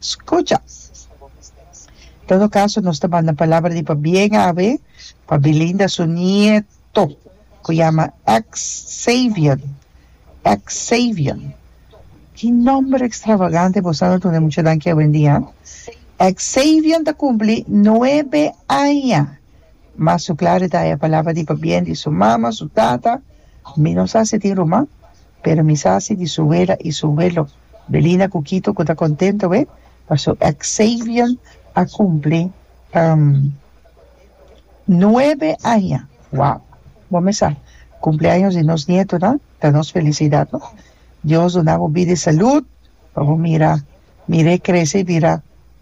Scucha! Todo caso nos ta banda palabra di pabien awe pa Belinda su nieto cu yama Xavion. Xavion. Ki nomber extravagante bo sa no tuna e muchanan aki awendia? Xavion ta cumpli nuebe aña. Mas su clara ta e palabra di pabien di su mama, su tata. Mi no sa si e tin ruman, pero mi sa si di su wela y su welo. Belina cu Kito cu ta contento aweh paso Xavian a cumpli nuebe aña wow bo mesa cumpleaños di nos nietonan ta nos felicidad no Dios duna bo bida y salud pa bo mira mir'e crece y bira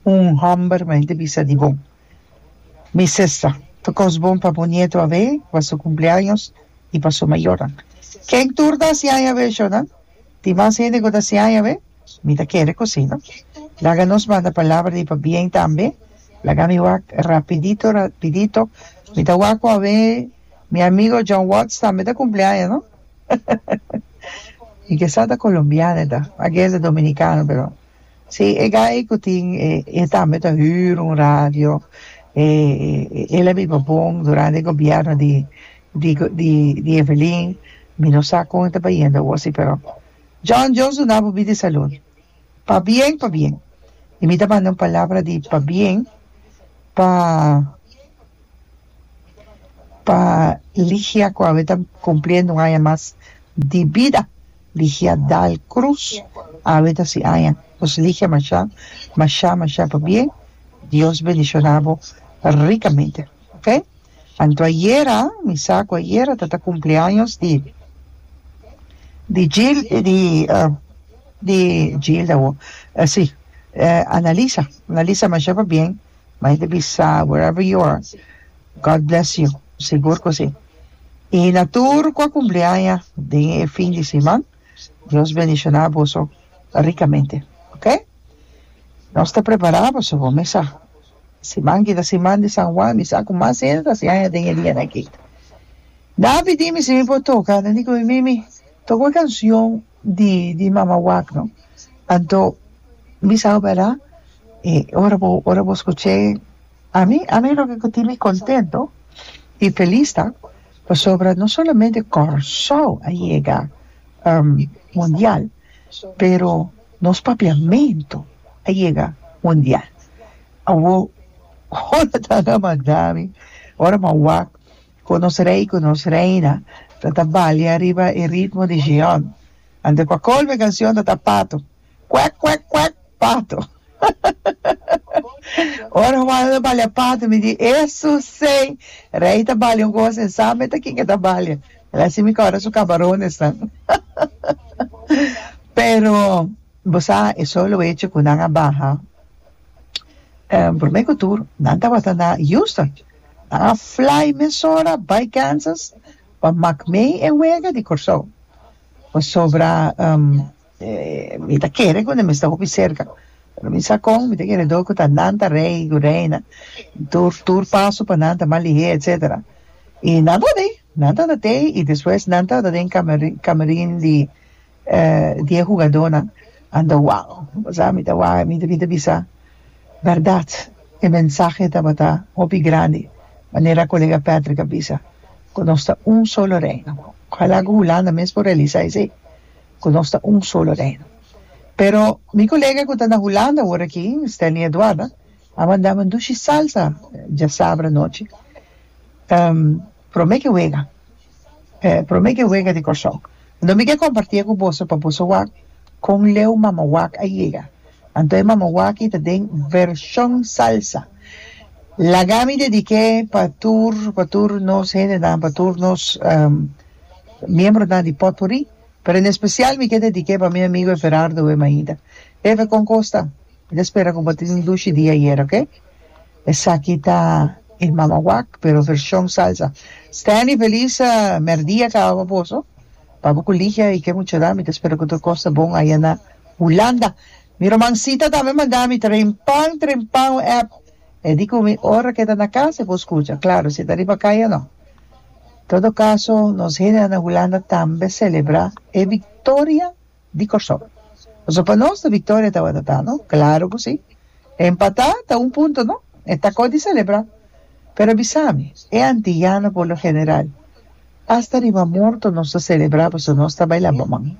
un homber mey ta bisa di bo. Mi sesa, ta kos bon pa bo nieto a be, pa su kumpleaños i pa su mayornan. Ken tur ta hasi aña be, Shona? Tin mas hende ku ta hasi aña be? Mi ta kere ku si, no? Laga nos manda palabra di pabien tambe. Laga mi wak rapidito, rapidito. Mi ta wak ku a be. Mi amigo John Watts tambe ta kumple aña, no? Hahahahah. I kesa ta kolombiano e ta, a guess e dominikano, pero. Sí, e guy cu tin e e tambe ta huur un radio, e el a biba bon durante e gobierno di di di di Evelyn, mi no sa con e ta bayendo awo si pero John Dios duna bo bida e salud pa bien pa bien y mi ta manda un palabra di pa bien pa pa Ligia cu awe ta cumpliendo un aña mas di bida. Ligia Dal Cruz awe ta si aña pues Ligia masha masha masha pabien Dios bendicionabo ricamente ok anto ayera mi sa cu ayera ta ta cumpleaños di di Gil di di Gilda wo si Analisa Analisa masha pabien maya ta bisa where ever you are God bless you sigur cu si. Y na tur cu a cumpli aña den e fin di siman Dios bendiciona boso ricamente ok nos ta prepara boso bo me sa siman aki ta siman di San Juan mi sa cu mas hende ta haci aña den e dianan aki na pidi mi si mi por toca nan di cu mi mimi toca un cancion di di mamawak no anto mi sa wera y ora bo ora bo scuche ami ami loke cu tin mi contento y feliz ta pasobra no solamente Curaçao a yega mundial pero nos papiamento a yega mundial awo ora nan a mandami ora mawak. Ku nos Rei ku nos Reina ta ta balia riba e ritmo di Shion. Anto pa kolmo e kanshon ta ta pato, Kwèk kwèk kwèk, pato! Ora humano ta balia pato mi di, Esu sey! Rei ta balia un kos en sa meta kin ke ta balia. El a hasi mi kòrda su kamaronesnan. Pero bo sa e solo echo ku nan a baha, promé ku tur nan tabata na Houston. ta a fly mesora bai Kansas pa mak mei e wega di Kòrsou pasobra mi ta kere ku nan mester hopi serka pero mi sa kon mi ta kere do ku ta nan ta rei ku reina tur tur paso pa nan ta mas lihé etsetera i nan tabata ei nan tabata ei i despues nan tabata den kamerin kamerin di die hugadónan anda wang bo sa mi ta wak mi ta bisa bèrdat e mensahe tabata hopi grandi manera kolega Patrick a bisa ku nos ta un solo reino ojalá ku Hulanda mes por realisá esei ku nos ta un solo reino pero mi kolega ku ta na Hulanda ora aki Stanley Eduarda a mandami un dushi salsa djasabra anochi. Prome ke wega e prome ke wega di Kòrsou. Anto mi ke kompartie ku boso pa boso wak kon leu mama wak a yega. Anto e mama waki ta den vershon salsa. Laga mi dedik'é pa tur pa tur nos hendenan pa tur nos miembronan di Potpuri pero en espesial mi ke dedik'é pa mi amigo Everardo Wemaida. Ever kon kosta? Mi ta spera ku bo tin un dushi di ayer oke. Esaki ta e Mama Wak pero version salsa. Stanley Feliz merdia ca awa boso pa bo cu Ligia y ke muchanan mi ta spera cu tur cos ta bon aya na Hulanda. Mi romancita tambe manda mi trempan trempan un app e di cu mi ora ke ta na casa e por scucha claro si ta riba caya no. Todo caso nos hende na Hulanda tambe celebra e victoria. di Kòrsou. Pasobra pa nos ta victoria tabata ta no? Claro cu si. Empatá ta un punto no? E ta cos di celebra. Pero bisami, e antillano por lo general, hasta riba morto nos ta celebra pasobra nos ta baila boman.